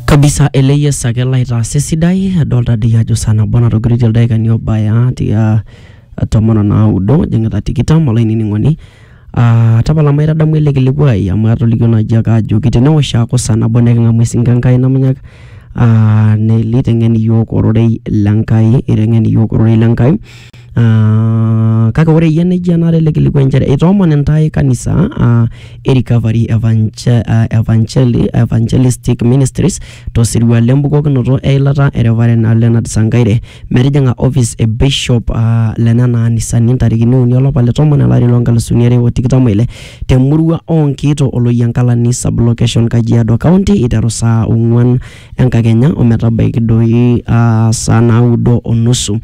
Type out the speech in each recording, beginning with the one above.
kabisa ele yes ake laitaasa esidai adolta dii ajo saa nabo natogirito ildaikani obaya tia tomon onaudo jing'ita tikitam olainining'oni Ah, tapala maitadamu ele kilikuai amu atolikio naaji ake ajoki tenewosh aaku saa nabo neking'amu esinka enkai namunyak ah, neliteng'en iyiook ororei lenkai iteng'en iyiook ororei lenkai Ah, kake ore iyie nejia enare ele kilikuai inchere itoomon intae kanisa ah, e recovery Evangel- ah, Evangeli- evangelistic ministries tosirua lembukokinoto eilata e Reverend Leonard Sankaire metijing'a office e bishop ah, lenena anisani ntarikini uni olapa le tomon elari loo nkalusuni are o tikitam oile temurua oonkiito oloyiankalani sublocation Kajiado County iteru saa ong'uan enkakenya ometabaiki doi ah, saa naudo onusu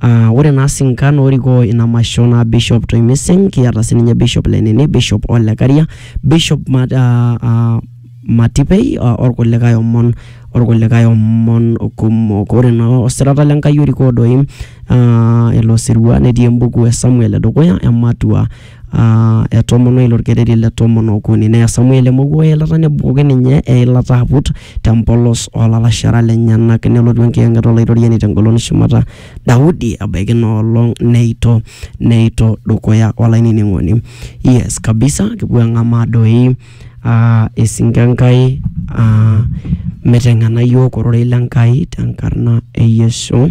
Aa ore naa sinkan orikoo ina masho naa Bishop Toi Mising, kiata sininye Bishop le Nene, Bishop Ole Karia, Bishop Ma- aa- aa- Matipei o- orkulikae omon orkulikae omon kumok. Ore naa osirata le Nkai orikoo doi aa ilo sirua netii embuku e Samuel e dukuya, ematua. aa etomonoki ilo orkereri le tomon okuni. Neya Samuel emowuo o eilata nebukoki ninye eilata aput te mpolos oo lalashera lenyenak. Nelotu enkiyang'et o Laitoriani te ngolon shumata Daudi ebaiki ina olong neito neito dukuya olainining'oni. Yes kabisa kipuo ang'amaa doi aa esingo e Nkai aa miteng'ena iyiok ororei le Nkai te nkarna e Yesu.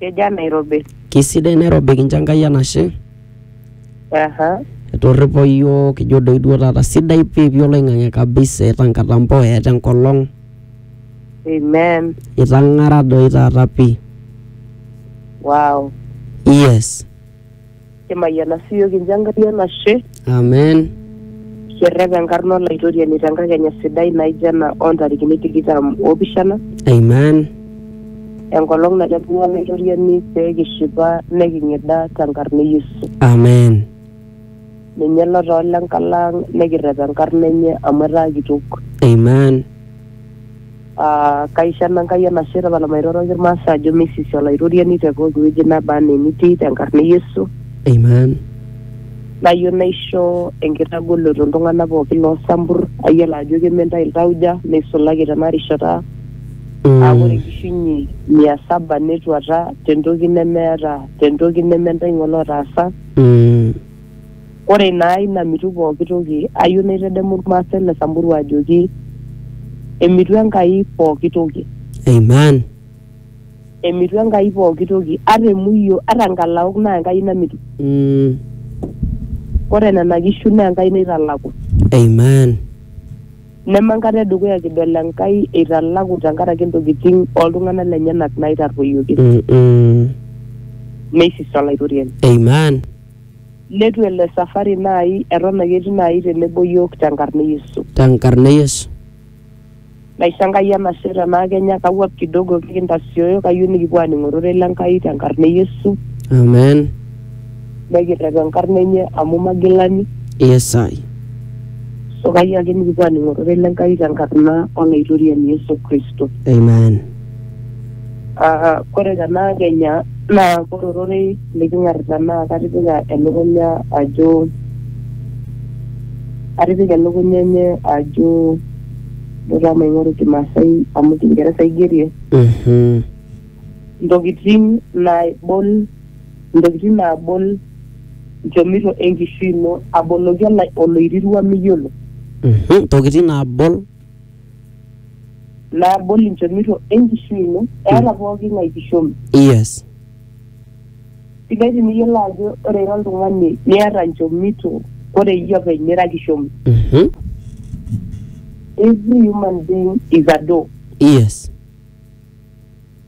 Kejaa Nairobi? Kisidai Nairobi kincho Enkai enashe. Aha. Etorripo iyiook ijo doi duo taata sidai pii pii oloing'ang'e kabisa eeta nkatampo eeta enkolong. Amen. Itang'ara doi taata pii. Wow. Yes. Kimayiana siiyio kincho Enkai enashe Amen. kirrep enkarna olaitoriani tenkakenya sidai naijo ena oontarikini tikitam oopishana Amen. enkolong nailepunye olaitoriani pee kishipa neking'ida tenkarna e Yesu. Amen. Ninye lotoola enkalaang' nikirrep enkarna enye amu etaa kitok. Amen. Ah, kaisho Enankai enashe tapalamairoroki irmaasa ajo meisisi olaitoriani te pooki wueji naba anaa enitii tenkarna e Yesu Amen. nayieu naisho enkitagoloto iltung'anak pooki loo sampur ayiolo ajo keme ntae iltauja neisulaki tena rishata aa ore Mm. enkishiunye mia saba netuata tentoki nemeeta tentoki neme ntae ng'ole otaasa Mm. Ore naa ina mitu pooki toki, ayieu naitedemu Ilmaasai le Samburu ajoki emitu Enkai pooki toki. Amen. Emitu Enkai pooki toki. Ata emuio, ata nkalaok naa Enkai namitu. Mm. Ore nena kishu naa Enkai naitalaku. Amen. Neme enkata edukuya kidol Enkai eitalaku tenkaraki intokitin oltung'anak lenyenak naitarruoyioki. Mm-mm. Neisis Olaitoriani. Amen. Netu ele safari naai eton ake etii naai tenebo iyiook tenkarna e Yesu. Tenkarna e Yesu. Naisho Enkai enashe tenaa kenya kawuap kidogo kake intasioyo kayieu nikipuo aaning ororei le Nkai tenkarna e Yesu. Amen. Nekirrep enkarna enye amu magilani. Yes I. So kayieu ake nikipuo aaning ororei le Nkai tenkarna Olaitoriani Yesu Kristo. Amen. Ah, kore tena kenya naa kore ororei liking'arita naa katipika elukunya ajo atipika elukunya enye ajo dutaa maing'oru kimasai amu kingeresa aigerie Mhm. ntokitin naibol ntokitin naabol nchomito enkishui ino aboloki olai- oloirirua miyiolo Mhm. Ntokitin naabol naabol inchomito enkishui ino eeta pooki ng'ae kishomi yes sidai tiniyiolo ajo ore ira oltung'ani niata inchomito ore iyie openy nira kishomi Mhm. every human being is a door yes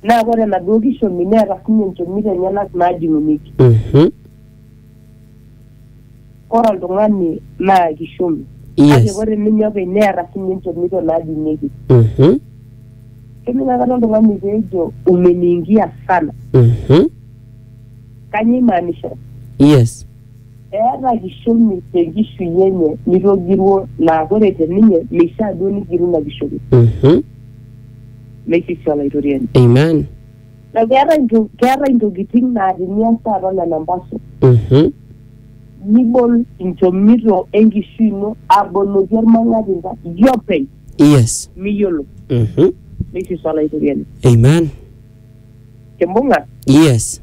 naa ore enaduo kishomi neeta sinye inchomito enyenak naajing'unyeki Mhm. ore oltung'ani naa kishumi kake yes ore ninye openy neeta sinye inchomito naadung'ieki Mhm, kening akata oltung'ani peejo umeniingia sana mhm, kanyio imaanisha yes eeta kishomi tenkishui enye nitogiruo naa ore te ninye meishaa duo nigiru ina kishomi Mhm, meisisi olaitoriani amen na keetae nto- keetae intokitin naa tenias taata nena mpaso Mhm. nibol inchomito enkishui ino aboloki ormang'atinda iyie openy yes miyiolo Mhm. neishisu olaitoriani amen kimbung'a yes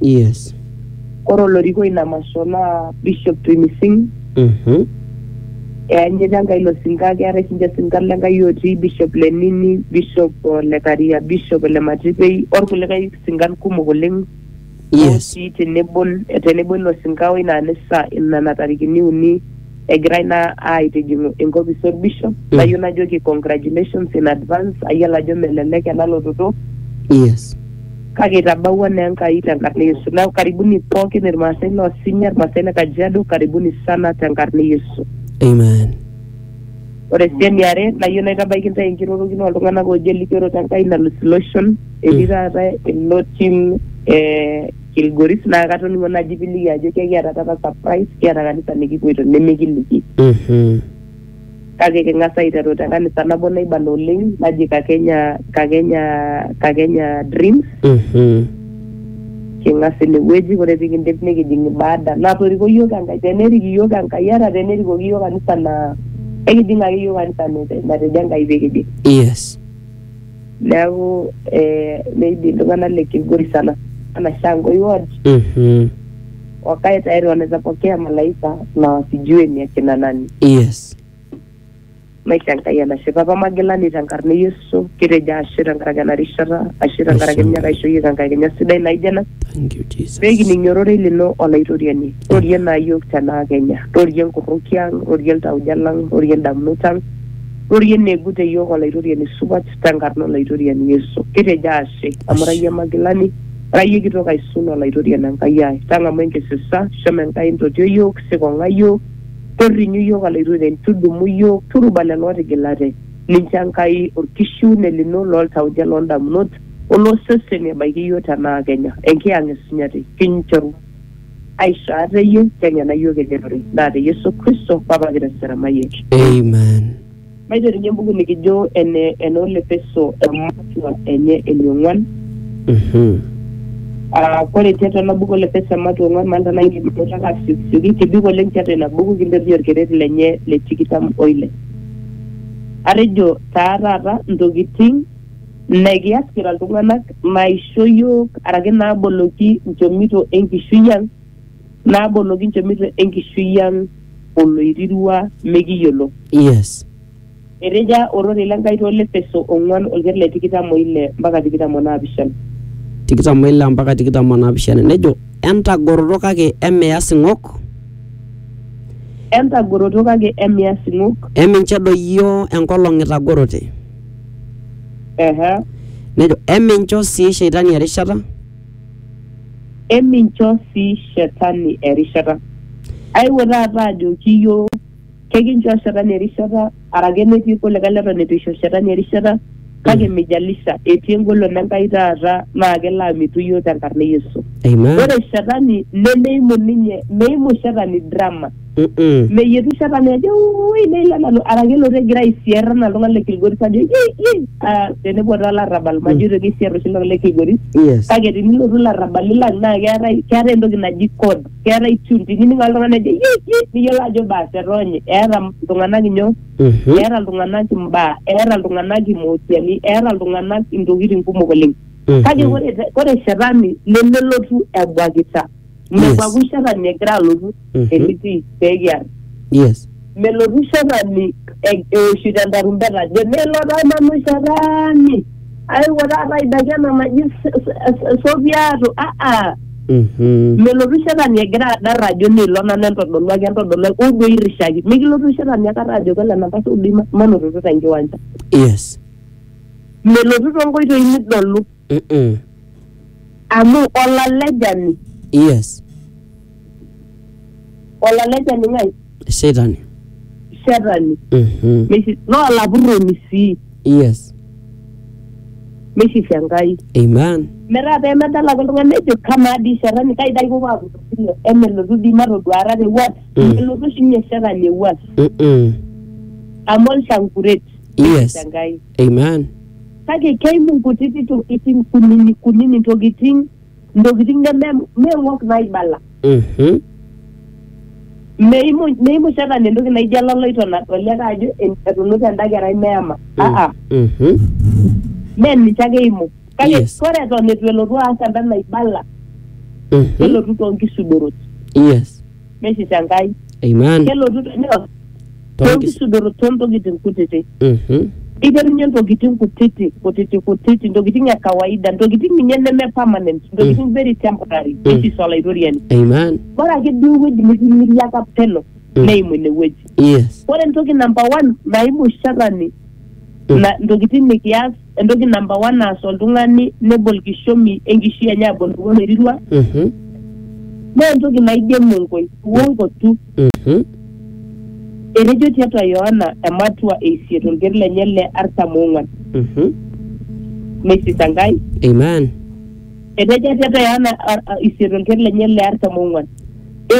Yes. Ore olorikoi ina masho naa Bishop Twinising Mhm. eanyita Enkai ilo sinka keetae sinche isinkan le Enkai otii Bishop Lenini, Bishop oh, le Karia, Bishop le Matipei orkulikae sinkan kumok oleng Yes. otii tenebo tenebo ilo sinka oina anisa nena tarikini uni egirai naa aitijing'u enkopis orbishop nayieu najoki congratulations in advance ayiolo ajo melelek ena lototo yes kake itabawua naa Enkai tenkarna e Yesu neeku karibuni pookin irmaasai loo Sinya irmaasai le Kajiado karibuni sana tenkarna e Yesu amen ore sii eniare nayieu naitabaiki intae enkirorokino oltung'anak ooji elikioroto Enkai nalus iloshon etii taata ilo tim eh, Kilgoris naa katoning'o naji piliki ajo kekiata taata surprise kiata kanisa nikipuoito nemikiliki Mhm. kake king'as aiteru te kanisa nabo naibala oleng naji Kakenya Kakenya Kakenya Dreams Mhm. king'as inewueji ore pikindip nikijing ibada natoriko iyiok Enkai tenerik iyiok Enkai ata tenerikoki iyiok kanisa naa ekijing ake iyiok kanisa nate- natejo Enkai pikijing Yes. neeku eh, maybe iltung'anak le Kilgori sana sana Shangoi ward Mhm. wakae tayari wanaweza pokea malaika na wasijue ni akina nani yes maisha Enkai enashe papa magilani tenkarna e Yesu kitejo ashe tenkaraki ena rishata ashe tenkaraki Ashe. ninye aisho iyiook enkakenya sidai naijo ena thank you jesus pekining ororei lino olaitoriani rorie naa yiok tenaa kenya rorie nkuruki ang rorie iltauja lang rorie indamunot ang Rorie negut te yook Olaitoriani supat te nkarna Olaitoriani Yesu. Kitejo aashe, amu ira iyie magilani, ira iyie kitok aisul Olaitoriani Enkai ai. Tang'amu enkisisa, shomo Enkai ntotio yook, sikong'a yook, torrinyu yook Olaitoriani, tudumu yook, turuba lelo ootigilate, lincho Enkai olkishiune lino loo ltauja loo ndamunot o loo seseni ebaiki yook te naakenya. Enkiyang'et sinyati kinchoru. aishoo iyie teng'ena iyiook ejerore naa te Yesu Kristo Papa kitesera mayiek. Amen. Maiterunye embuku nikijo ene enoo Lepeso ematua enye eniong'uan. Mhm. Ah, Ore tiatua ena buku Lepeso ematua ong'uan maalta naa indim anoto ake asiokisioki kebik oleng tiatua ina buku kinterunye orkeret lenye le tikitam oile. Atejo taa taata intokitin Mme kias kira iltung'ana maisho iyiook araki naaboloki nchomito e nkishui ang, naaboloki nchomito e nkishui ang oloirirua mekiyiolo. Yes. Eteja ororei le Nkai too Lefeso ong'uan olker le tikitam o ile mpaka tikitam o naapishana. Tikitam o ile mpaka tikitam o naapishana nejo, Entagoroto kake emias ing'ok. Entagoroto kake emias ing'ok. Eminchedoyio enkolong itagorote. Ehe. Nejo emincho sii sheitani erishata. Emincho sii shetani erishata. Aewuo taata ajoki iyiook kekinchoo shetani erishata arake netii kulikae leton eitu eisho shetani erishata kake mijalisha etii engolon Enkai taata naa kelo amitu iyiook tenkarna e Yesu. Amen. Ore shetani nemeimu ninye meimu shetani drama. Mm-mm. meyietu shetani ajo ui neilo nanu araki elotu egira aisier anaa iltung'anak le kilgoris ajo yei yei Ah, tenepuo taa larrabal majo itoki aisier oshi iltung'anak le kilgoris yes kake tenilotu larrabali lang naa keetae keetae entoki naji code keetae tune tinining ake oltung'ani ajo yei yei niyiolo ajo baas etoonye eeta iltung'anak inyoo Mhm. eeta iltung'anak imbaa eeta iltung'anak imootiani eeta iltung'anak intokitin kumok oleng kake Mhm. ore te- ore shetani nemelotu ebuakita mekua Yes. oshi shetani egira alotu Mhm. enitii pekiar yes melotu shetani e- eoshito entarumbeta ajo nelo taa nanu shetani aiwuo taata aidaki ena naji s- s- s- sopiato aa Mhm. melotu shetani egira adar ajo nilo nanu entodoluaki entodoluaki uduo irishaki mikilotu shetani akata ajo kelo enapa sodoi ma- manototo tenkiwanja yes melotu tonkoitoi nidolu Mm-mm. amu olalejani yes olalejani ng'ae shetani shetani Mhm. Meshi- naa olapurroni sii yes meshishi enkai amen metaa pemedal ake oltung'ani nejo kamaa dii shetani kai dai kipuo apuo sile emelotu dii matoduara tewuat Mm. elotu oshi ninye shetani ewuat Mm-mm. amu olshankuret Yes. enkai amen Kake keimu nkutiti tokitin kunini kunini ntokitin ntokitin neme meing'ok naibala. Mhm. Meimu meimu shetani entoki naijo eloloito nadoli ake ajo etunuta enda kerai meema. Aa, Mhm. mee ninche ake eimu. Kake Yes. ore eton eitu elotu aas enda naibala Mhm. kelotu too nkisudorot. Yes. neshit Enkai. Amen. Kelotu teneos Toonkis- toonkisudorot toontokitin kutitik. Mhm. Eiterunye ntokitin kutiti kutiti kutiti ntokitin e kawaida ntokitin ninye neme permanent ntokitin very temporary netis olaitoriani. Amen. Ore ake duo ewueji nitimiriaka pelo Mm. neimu ine wueji. Yes. Ore entoki namba one naimu shetani Mm. na ntokitin nikias entoki namba one naas oltung'ani nebol kishomi enkishui enye abol kuo loirirua Mhm. naa entoki naijo emonkoi uongo tu Mhm. etejo tiatua yohana ematua eisiet olker lenye le artam oong'uan Mhm. meisisa enkai Amen. etejo tiatua yohana ar- a- isiet olker lenye le artam oong'uan